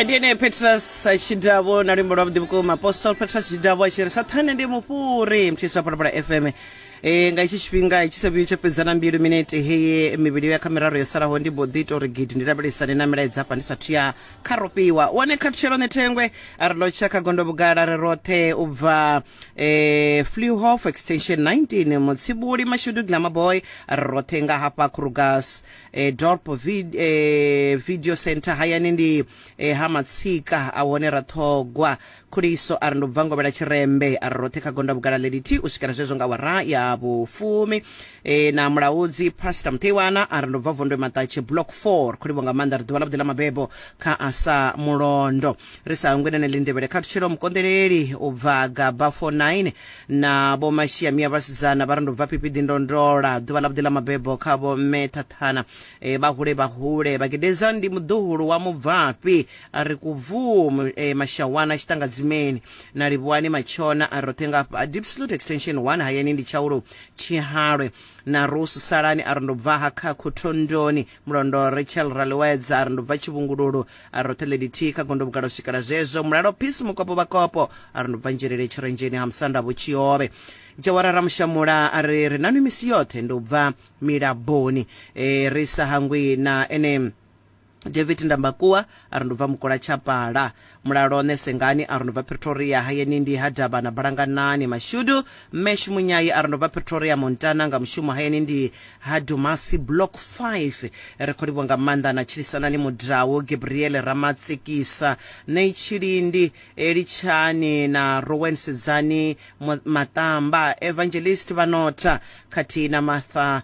ndi ene petrus chidavo na luimbo lwa vhuḓi vhukuma apostol petrus chidavo a tshi ri sathane ndi mufhuri mthisi wa phalaphala fm e nga itshi tshifhinga tshi sa vhuyi tsha fhedza na mbilu minete heye mivhili ya kha miraru yo salaho ndi mbo ḓi tou ri gidi ndi lavhelesane na milaedza hafha ndi sathu ya kha rofhiwa wone khathutshelo ne thengwe a ri lotsha kha gondo vhugala ri roṱhe u bva eh, flehof extension 19 mutsibuli mashudu glamaboy a ri roṱhe nga hafha krugas e, dorp vid, e, video center hayani ndi e, ha matsika a hone ra ṱhogwa khuliso a ri ndo bva ngovhela tshirembe a ri roṱhe kha gonda vhugala ḽe ḽithihi u swikela zwezwo nga wara ya vhufumi e, na mulaudzi pastor muṱeiwana a ri ndo bva vondwe maṱatshe block 4 khulivho nga maanḓa ri ḓuvha ḽa vhuḓi ḽa mabebo kha a sa mulondo ri sa hangwe nene lindevhele khathutshelo mukonḓeleli u bva gaba 49 na vho mashia mia vhasidzana vha ri ndo bva pipiḓi ndo ndola ḓuvha ḽa vhuḓi ḽa mabebo kha vho mme thathana e, vha hule vha hule vhagedeza ndi muḓuhulu wa mubvafhi a ri kubvuu e, mashawana tshiṱangadzimeni na livhuwani matshona a roṱhe nga hafha deep salute extension 1 hayani ndi tshaulu tshihalwe na rusu salani a ri ndo bvaha kha khothondoni Mulondo Rachel Raliwedza a ri ndo bva Tshivhungululu a ri roṱhe ḽelithihi kha gondo vhukale u swikela zwezwo mulalo Peace Mukopo Vhakopo a ri ndo bva Nzhelele Tshirenzheni ha Musanda Vho Tshiovhe Jawara Ramushamula a ri ri nanwi misi yoṱhe ndo bva Milaboni e, ri sa hangwi na ene David Ndambakuwa a ri ndo bva Mukola Tshapala Mulalone, Sengani a ri ndo bva Pretoria, hayeni ndi ha Davhana Balanganani. Mashudu, Mme Shumunyai a ri ndo bva Pretoria, Montana nga mushumo, hayeni ndi ha Dumasi Block 5. Ri khou livhuwa nga maanḓa na Tshilisanani Mudau, Gabriele Ramatsikisa, Nay Tshilindi, Litshani na Rowen Sedzani Maṱamba, Evangelist Vhanotha khathihi na Martha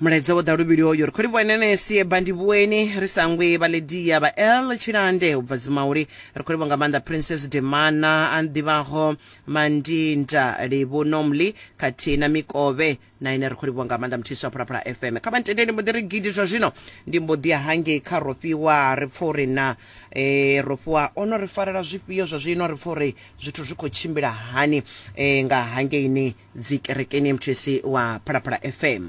Mulaedza wo ḓa luvhili hoyo, ri khou livhuwa Enenesi, Ebba Ndivhuweni, Risangwe, Vhaledia, Vhael Tshilande u bva Dzimauli, ri khou livhuwa nga maanḓa Princess Demana, a ḓivhaho Mandinda, Livhu Nomli khathihi na Mikovhe na ine ri khou livhuwa nga maanḓa Mthisi wa Phalaphala FM. Kha vha ntendele ndi mbo ḓi ri gidi zwa zwino ndi mbo ḓi ya hangei kha Rofhiwa ri pfa uri na e, ro fhiwa o no ri farela zwifhio zwa zwino ri pfa uri zwithu zwi khou tshimbila hani e, nga hangeini dzi kerekeni mthc wa phalaphala fm